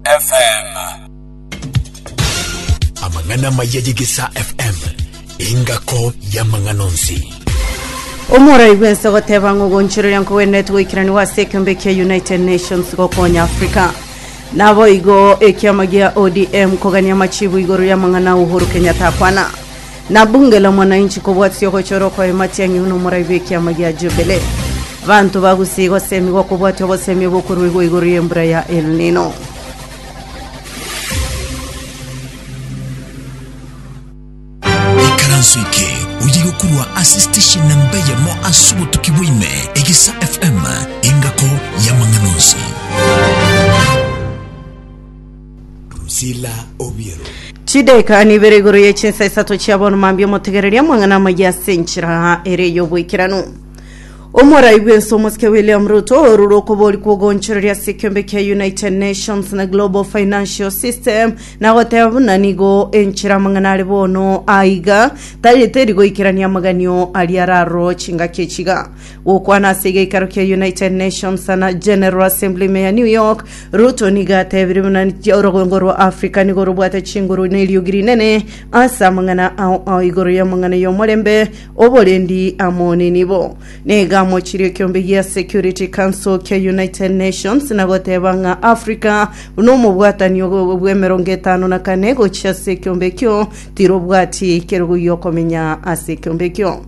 FM. Amang'ana amaya y'Egesaa FM, engako y'amang'ana onsi. omorai bwense goteba ng'a ogonchoreria nkogwenerete goikeraniwa ase ekeombe kia united nations gokonya africa naboigo ekiama gia odm kogania machibu igoro y'amang'ana a uhuru kenyatta akwana Nabungela omwananchi kobwatiti ogochora okoyoma ati ang'e buna omorai bw'ekiama gia Jubilee. Abanto bagusiga osemigwa kobwatia obosemi obokoruegwa igoro y'embura ya El Nino. Ikaranso eke oye gokorwa ase station namba eyemo ase obotuki bwa ime, Egesa FM, engako y'amang'ana onsi. Drusilla Obiero. Chidaeka nibere igoro ye chinsa isato chia bono mambia omotegereria amang'ana amaye ase enchera ere y'oboikeranu omorai bwense omosike william ruto orure okobori kwogonchoreria ase ekiombe kia united nations na global financial system na goteba buna nigo enchera amang'ana are bono aiga tagete rigoikerania amaganio aria araro chingaki echiga Gokwana ase egeikaro kia United Nations na General Assembly ime ya New York, Ruto nigo atebirie buna orogongo rwa Africa nigo robwate chinguru na eriogi rinene ase amang'ana ao ao igoro y'amang'ana y'omorembe, oborendi amo nenibo. Nigo amochirie ekiombe gia Security Council kia United Nations na goteba ng'a Africa buna omobwatani ogo bw'emerongo etano na kane gochia ase ekiombe ekio, tirobwati kerogo gi'okomenya ase ekiombe ekio.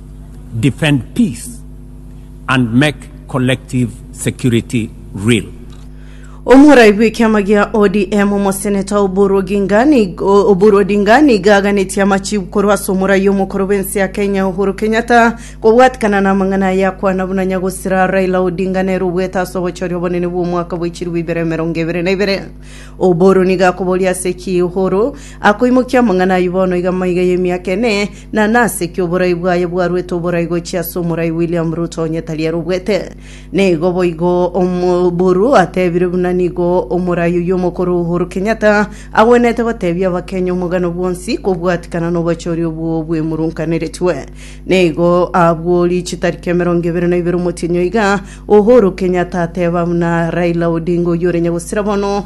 defend peace and make collective security real. Omorai bw'ekiama gia ODM Omoseneta Oburu Oginga nigo Oburu Odinga nigo aganetie amachibu korwa ase omorai omokoro bw'ense ya Kenya Uhuru Kenyatta kobwatikana namang'ana aya akwana buna nyagosira Raila Odinga nere obwete ase obochori obonene bw'omwaka bw'echiribu ibere emerongo ebere na ibere. Oburu nigo akoboria ase ki Uhuru akoimokia amang'ana ayio bono iga maiga y'emiaka ene na nase ki oborai bwaye bwarwete oborai gochia ase omorai William Ruto onye tari ere obwete? Nigo boigo omoburu atebire buna nigo omorai oyio omokoro Uhuru Kenyatta agwenete gotebia abakenya omogano bwonsi kobwatikana nobochori obwo bwemurunkaneretwe. Nigo abwo richi tariki emerongo ebere na ibere omotienyi oiga Uhuru Kenyatta ateba buna Raila Odinga oyio ore nyagosira bono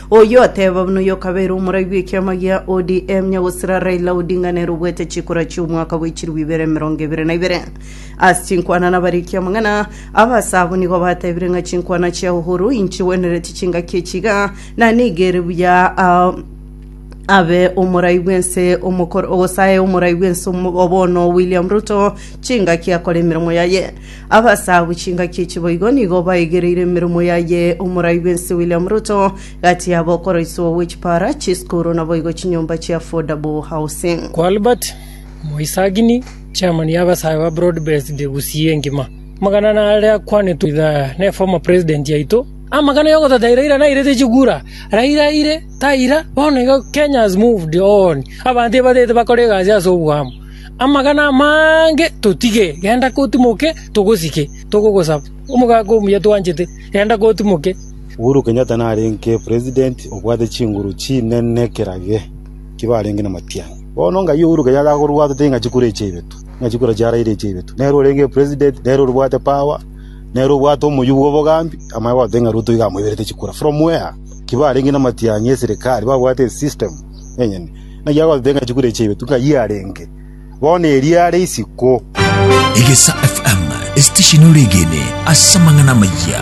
Oyio ateba buna oyokabeire omorai bw'ekiama gia ODM nyagosera Raila Odinga nere obuete chikura chi'omwaka bwe chirbu ibere emerongo ebere na ibere. Ase chinkwana nabariki amang'ana, abase abo nigo batebire ng'a chinkwana chia Uhuru inchigwenereti chingaki echi iga, na nigo ere buya ah, abe omorai bw'ense omokoro, gose aye omorai bw'ense omo- bono William Ruto chingaki akore emeremo yaye. Abasagu chingaki echi boigo nigo baigereire emeremo yaye omorai bwense William Ruto, gati yabo okoroiswa gwe chipara, chisukuru na boigo chinyomba chia affordable housing. Kwa Albert Moisagini, Chairman ya abasae ba Broad Based Gusii engima, amagana ane are akwanetwe idha ne former President yaito, Amagana ya ogotataira Raila nairete chikura, Raila aire, taira, bono iga Kenya has moved on, abanto ebatete bakora egasi ase oboamo. Amagana amange totige, genda kotimoke, togosike, togogosaba. Omogaka omuya twanchete, genda kotimoke. Uhuru Kenyatta narenge president obwate chinguru chinene kera gee, kibe arenge namatianyi. Bono ngai Uhuru Kenyatta akorua totebe ng'a chikura echi ebitu, ng'a chikura chiaraire echi ebitu. Nere orenge president, nere orobwate power, nere obwate omoyio bw'obogambi, amanye goteba ng'a Ruto iga amoiberete chikura. From where? Kibe arenge namatianyi eserekari babwate esystem. enyene. Naki agoteta ng'a chikure chiaibetwe, ng'ai arenge, bono erio are isiko. Egesa FM, esitesheni ore egene ase amang'ana amayia.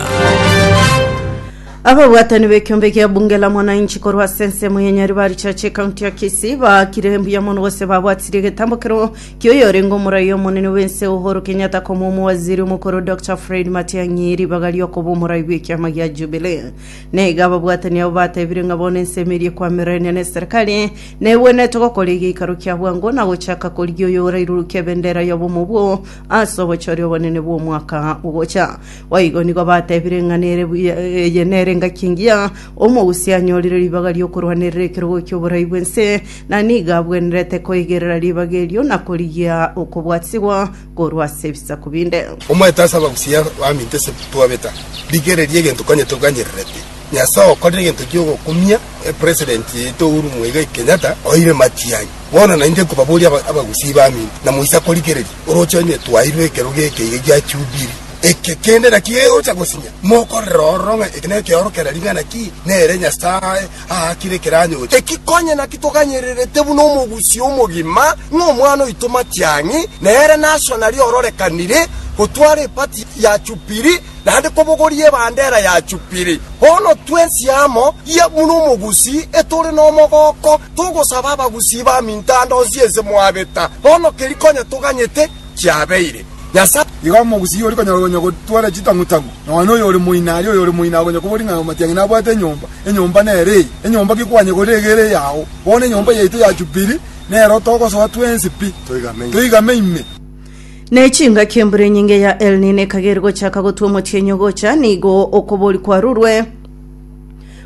Ababwatani b'ekiombe gia bunge la mwananchi korwa ase ensemo ya Nyaribari Church ekaunti ya Kisii baakire mbuya mono gose babwatirie egetambokero kioyorenge omorai omonene bw'ense Uhuru Kenyatta komwa omowaziri omokoro Dr Fred Matiang'i ribaga riokoba omorai bw'ekiama gia Jubilee. na iga ababwatani abo batebire ng'a bono ensemo eria ekwamererania n'eserekari negwenerete gokora egeikaro kia bwango na gochaka korigia oyo orairurukia ebendera y'obomo obwo ase obochori obonene bw'omwaka ogocha. Boigo nigo batebire ng'a nere buya eye nere engaki engiya omogusia anyorire ribaga ri'okorwanerera ekerogo ki'oborai bw'ense, na nigo abwenerete koigerera ribaga erio na korigia okobwatigwa korwa ase ebisaku binde. Omanyete ase abagusia baminto ase twabeta, rigereria egento konyete oganyererete. Nyasae okorire egento giogokumia President yaito Uhuru Muigai Kenyatta oire Matiang'i. Bono nainche nkobaboria abagusia baminto na moise korigereria oroche onye twairwe ekero geke iga gia Jubilee. Eke kende naki egocha gosinya mokorere ororo ng'a eke nekeoro kera ring'ana ki nere Nyasae aakire ekeranyocho eki, konya naki toganyererete buna omogusii omogima, ng'a omwana oito Matiang'i nere naso naria ororekanire gotwara epati ya chupiri, naende kobogoria ebandera ya chupiri. Bono twensi amo, ria buna omogusii, etore nomogooko, togosaba abagusii baminto ande onsi ense mwabeta, bono keria konya toganyete kiabeire. Nyasae. Igo omogusii ori konya konya gotwara chitang'u-tang'u, nonya oyo ore moina, aria oyo ore moina akonya koboria ng'a Matiang'i nabwate enyomba, Enyomba nere eye, enyomba gekwanyegorera egere yao. Bono enyomba yaito ya Jubili nero togosoa twensi pi, toigame ime. Ne chingaki embura enyinge ya El Nino ekageri gochaka gotwa omotienyi ogocha, nigo okobori kwarurwe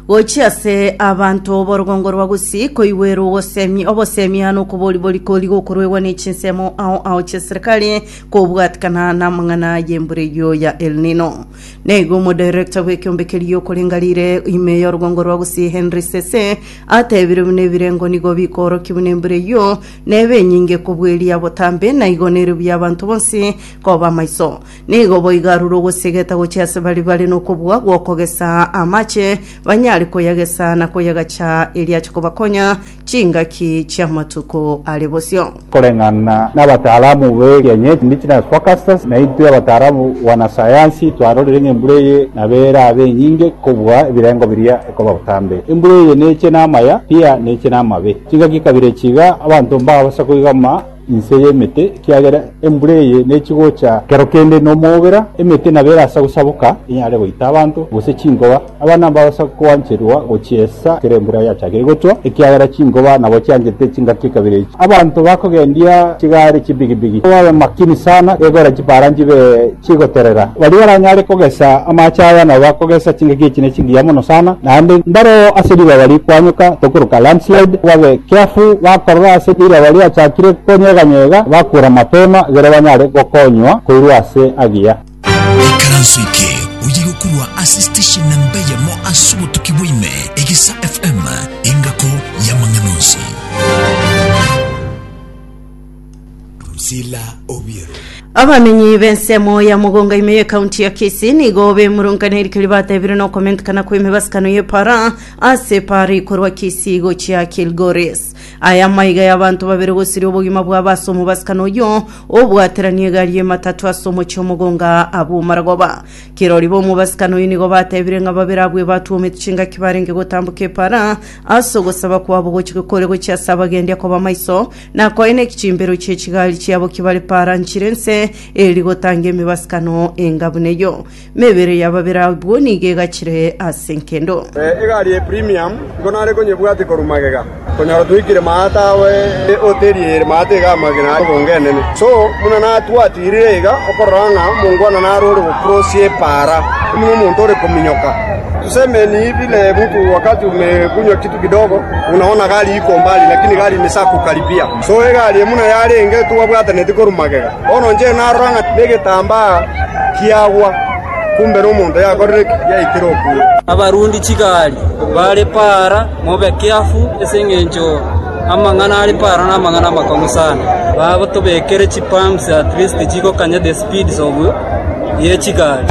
gochia ase abanto b'orogongo rwa Gusii koigwera ogosemi, obosemia na okobori borikori gokoruegwa ne chinsemo ao ao chi'eserikari kobwatikana namang'ana y'embura eyio ya El Nino. Na igo omodirector bw'ekeombe keria giokorenga rire ime y'orogongo rwa gusii Henry Sese atebire buna ebirengo nigo bikoorokia buna embura eyio nebe enyinge kobweria botambe na igo nere buya abanto bonsi koba amaiso. Nigo boigo arure ogosegeta gochia ase bare bare nokobua gw'okogesa amache banyare koyagesa na koyagacha eria ache kobakonya Chingaki chi'amatuko are bosio. Koreng'ana nabataalamu b'erianyeto Indigenous Forecasters, naintwe abataalamu bwanasayansi twarorire ng'a embura eye nabo erabe enyinge kobua ebirengo biria ekoba botambe. Embura eye neche namaya, pi-a neche namabe. Chingaki kabere chiga abanto mbabasa koigama. inse y'emete, ekiagera embura eye nechi gocha kero kende nomobera, emete nabo erase gosaboka enyare goita abanto, gose chinkoba. Abana mbagosa koancherwa gochiesa ekero embura yachakire gochwa, ekiagera chinkoba nabo chiangete chingaki ekabere echi. Abanto bakogendia chigari chibigibigi, babe makini sana, begore chipara nchibe. chigoterera. Baria baranyare kogesa amaache aya nabo bakogesa chingaki echi ne chingiya mono sana, naende mbareo ase ribaga rikoanyuka tokoroka landslide, babe careful bakorora ase ribaga riachakire konyeganyega bakura mapema egere banyare gokonywa koirwa ase agiya. Ikaranso eke oye gokurwa ase station namba eyemo ase obotuki bwa ime, Egesa FM, engako y'amang'ana onsi. Sila Obiero. Abamenyi b'ensemo ya Mogonga ime ye kaunti ya Kisii nigo bemurungane erikio ribatebire nokomentekana kw'emibasikano y'epara ase epara ikorwa Kisii gochia Kilgoris. Aya amaiga y'abanto babere gosiria obogima bwabo ase omobasikano oyio obwaterania egari y'ematatu ase omochie o Mogonga abwo omaragoba. Kirori b'omobasikano oyio nigo batebire ng'a babere abwo ebatwomete chingaki barenge gotamboka epara ase ogosaba kwabo gochika kore gochia ase abagendi akoba maiso Na koine eki chimbero chie chigari chiabo kibare para nchire nse, eri gotanga emibasikano enga buna eyio. Mebere ya babere abwo nigo egachire ase nkendo. Eh, egari ye premium nigo nare konyebwate korwa magega, konya otwikire maata awe ehoteri ere maata iga amagena are obonge enene. So, buna natwatirire iga, okorora ng'a omongwana nare ore gocrossia epaara, nigo omonto ore kominyoka. Tuseme ni vile mtu wakati umekunywa kitu kidogo unaona gari iko mbali lakini gari imesha kukaribia so egari eye buna yarenge twabwataneti korwa magega bono inche narora ng'a negetambaa kiagwa kumbe nomonto yakorire ki yaikire okwo. Abarundi chigari bare paara mobe keafu ase engencho amang'ana are paara namang'ana amakong'u sana. Batobekere chipumps at least chigokanya the speeds of ye chigari.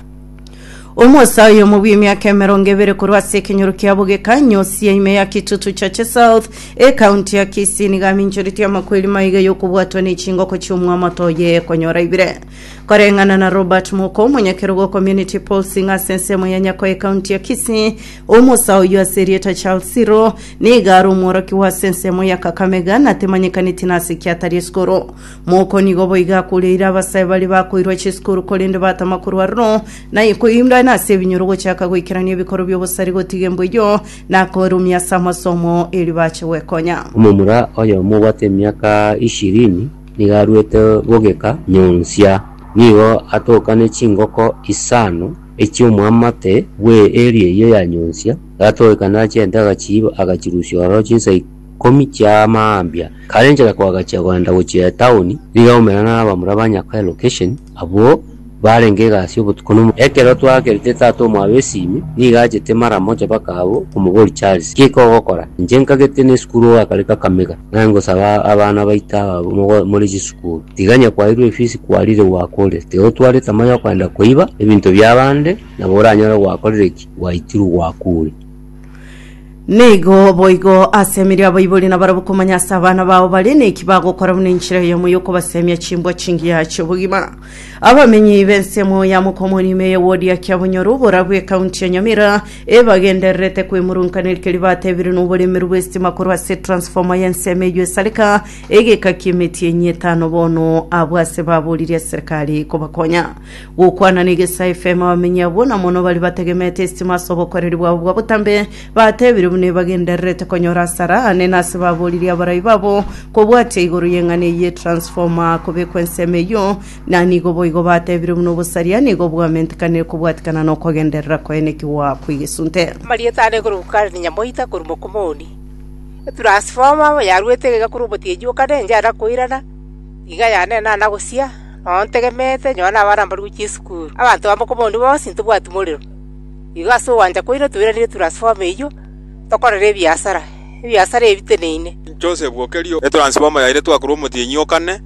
Omosa oyomo bw'emiaka emerongo ebere korwa ase ekenyoro kia bogeka nyosia ime ya kitutu chache south ekaunti ya kisii nigo aminchoretie amakweri maiga y'okobwatwa ne chingoko chi'omwamato oye ekonyora ibire koreng'ana na robert moko omonyakerogo community polsing ase ensemo ya nyako ekaunti ya kisii omosa oyo ase erieta charles siro niga are omworoki wa ase ensemo ya kakamega natemanyekaneti nase kiatari esikoro Moko nigo boiga akoreire abasae baria bakoirwa chisukuru korende batama korwa aroro, na koindana ase ebinyoro gochaka goikerania ebikoro bi'obosare gotiga embu eyio, na koerumia ase amasomo erio bache gwekonya. Omomura oyomo obwate emiaka ishirini nigo aruete bogeka nyonsia. Nigo atokane chingoko isano echi'omoamate bw'eeri eyio ya nyonsia, gatogekano achiente agachiiba agachirusia ororo chinsa ikomi chia mambia. Kare enchera koagachia koenda gochia etaoni, nigo omera na abamura ba nyakwa elocation abwo barenge egasi y'obotuko na omochie. Ekero twakerete tata omwabo esimi, nigo achete mara mocha baka abwo komobori Charles, giki ogokora? Inche nkagete ne esukuru ogakare Kakamega, naye ngosaba abana baito aba mogo more chisukuru. Tiga nyakwairwe efisi kwarire gwakorire, tiga otware tamaa yokoenda koiba ebinto bia abande, nabo oranyore gwakorire ki? Gwaitirwe gwakure. Nigo boigo asemire abaibori nabarabwo komanya ase abana bao bare neki bagokora buna enchera yamo yokobasemia chimbwa chingiya chi'obogima abamenyi b'ensemo ya mokomorima eye wodi ya kiabonyoro oborabu ekaunti ya nyamira ebagendererete kwemurunkaneri keri batebire n'oboremeru bw'estima korwa ase transforma y'ensemo eyo esareka egeka ki'emeti enye etano bono abwo ase baborire serikali kobakonya Gokwana negesa efemo abamenyi abwo, na mono baria bategemete esitima ase obokoreri bwabo bwa botambe, batebire buna ebagendererete konyora asara ane, na ase baboririe abarai babo kobwatia igoro y'eng'ana eyio ye transformer kobekwa ensemo eyio, na nigo boigo batebire buna obosaria nigo bwamentikanire kobwatikana na okogenderera koenekigwa kw'egesunte. Amarieta ane korwa Ukali Nyamoita korwa Mokumuni, etransformer yaruete iga korwa omotiechi o Kane enchara koirana, iga yanenana gosia, Nonya ontegemete, nyora nabaramborigwe chisukuru. Abanto abambe kobonde bonsi ntobwati morero. Igo ase ogwancha kwaino toiranerie Turasifoma eyio, tokorere ebiasara, ebiasara ebiteneine.” Inche osebwokerio e Turasifoma yaino twakorwa omotienyi o kane,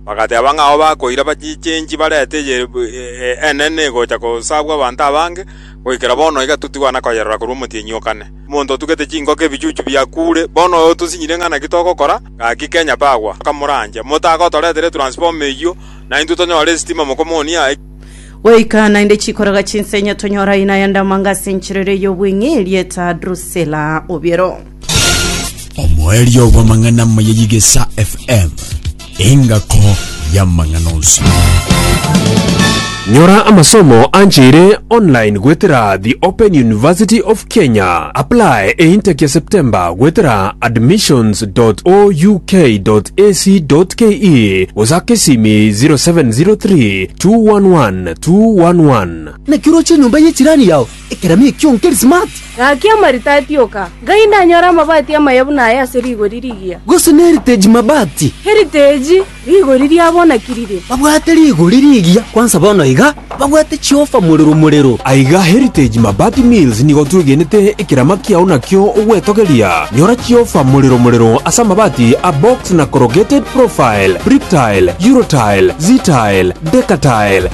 bagateeba ng'a ao bakoira bachichenchi barete eye enene egocha gosabwa abanto abange, goikera bono iga toti kwana koyerora korwa omotienyi o kane. Omonto otugete chingoko ebichuchu biakuure, bono oyo otosinyirie ng'a naki togokora? Gaki Kenya Power akamorandia, Motaaka otoretere transformer eyio, na intwe tonyore esitima mokomonia aye. Goika naende chikoraga chinsenya tonyora aye naye ndamanga ase enchera eria y'obweng'e erieta Drusilla Obiero. Omoerio bw'amang'ana amaya y'Igesa FM, engako y'amang'ana onsi. Nyora amasomo ancheire online goetera The Open University of Kenya, apply e intake ya September goetera admissions.ouk.ac.ke gosaka esimi 0703 211 211. Naki oroche enyomba ye chirani yao ekerami ekio nkeri smart? Gaki amaritati oka, ngai ndanyore amabati amaya buna aya ase rigori rigiya. Gose ne heritage mabati? Heritage. Rigori riabo naki rire? Babwate rigori rigiya, kwansa bono iga babwate chiofa morero morero. Aiga Heritage Mabati Mills nigo twegenete ekerama kiao nakio ogwetogeria. Nyora chiofa morero morero ase amabati a box na corrugated profile, Bricktile, Eurotile, Ztile, Decatile,